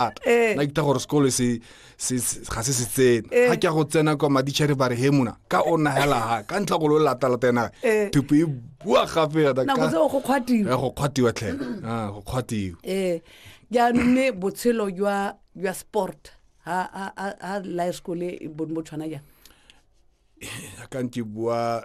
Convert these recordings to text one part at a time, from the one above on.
a eh. na kita gore sekolo se ga se se tsene eh. ga ke ya go tsena kwa madichere ba re he mona ka o nagela ga ka ntlha go lo latalata ena eh. thupo e bua gape ya go kgwatiwa tlhe ah, go kgwatiwa ee jaanong mme botshelo jwa sport ha life school e bone bo tshwana jang ka nke bua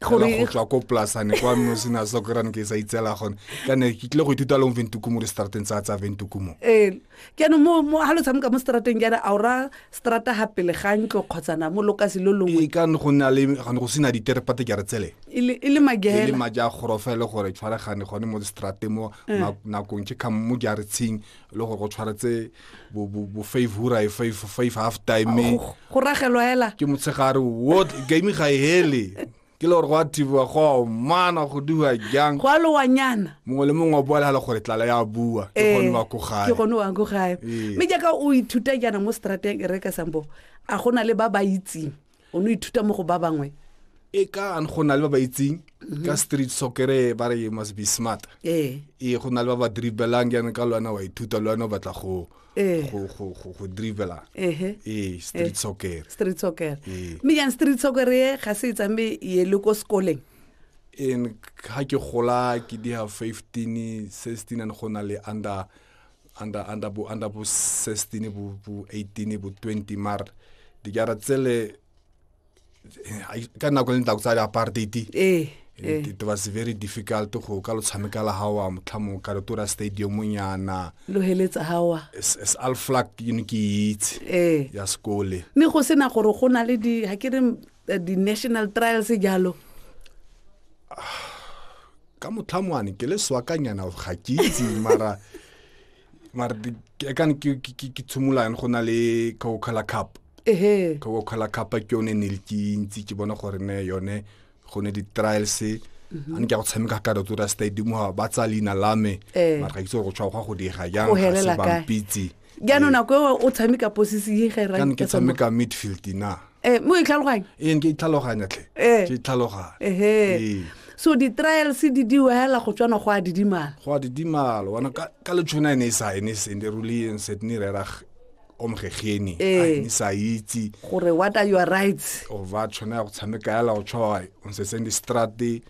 go tswa ko plasane kwa mme o sena sa kry ke sa itsela gone ka ne ke tlile go ithuta leng ventukumo le strateng tsa tsa ventukumo ee jaanong mo mo ga lo tshameka mo strateng jaana a ora strata ga pele ga ntlo kgotsana mo lokasi lo longwe ee, ka go na le go sena diterepate ke re tsele e le e magela e le maja gorofele gore tshwaregane gone mo strateng mo ee. nakong ke kgang mo jaretsheng e le gore go tshwaretse bo five hura e five five half time go ragelwa hela ke motshegare what game ga e hele ke le gore go a thibiwa go a mana go diwa jang go a lowanyana mongwe le mongwe o bolela gore tlala ya bua ke eh, gone wa ko gae ke gone wa ko gae eh. mme jaaka o ithuta jaana mo strateng e reka sambo a gona le ba ba itseng o ne ithuta mo go ba bangwe e ka go na le ba ba itseng mhm. ka street soccer ba re must be smart ee e go na le ba ba dribelang yana ka lwana wa ithuta lwana o batla go ee. go go go go dribela ehe ee street ee. soccer street soccer ee. mme yang street soccer e ga se itsambe ye le ko sekoleng in ga ke gola ke di ha 15 16 and go na le under under under bo under bo 16 bo bo 18 bo 20 mar di gara tsele eh, ka nako le ntako tsa di apartheid eh, eh. it was very difficult go ka lo tshameka la hawa motlhamo ka Rotora Stadium nyana lo heletsa hawa as al flag you know ke itse eh ya skole ne go sena gore go na le di ha ke re eh, di national trials jalo ah. ka motlhamoane ke le swakanyana ga ke itse mara mara ekane ke tshimolane go na le coca-cola cup ehe coca-cola cup ke yone ne le ke ntsi ke bona gore ne yone go ne di-trials mhm. a ne ke a go tshameka ka rotora stadium ba tsa leina la me eh. mara ga itse gore go tshwa go go dira jang ga se bampitse jaanong nako eo o tshameka posisi e ga e rae- ke tshameka midfield na Eh, mo e tlhaloganye ee ke itlhaloganya tlhe Eh. ke itlhaloganya ehe Ee. so di-trials di diwa hela go tswana go a didimala go a didimalo wana ka ka letšhona e ne e sa e ne e se ne ruli en set ne rera g- omgegeni Eh. Ai, ne sa itse gore what are your rights o ba tshwana ya go tshameka yala go tshwa o ntse seng di strate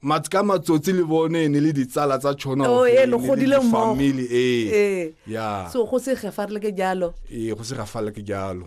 mat ka matsotsi le bone ne le ditsala tsa tšhona Oh, ee, lo godile mmogo. family ee ee ya so go se gefa re le ke jalo ee go se gafala ke jalo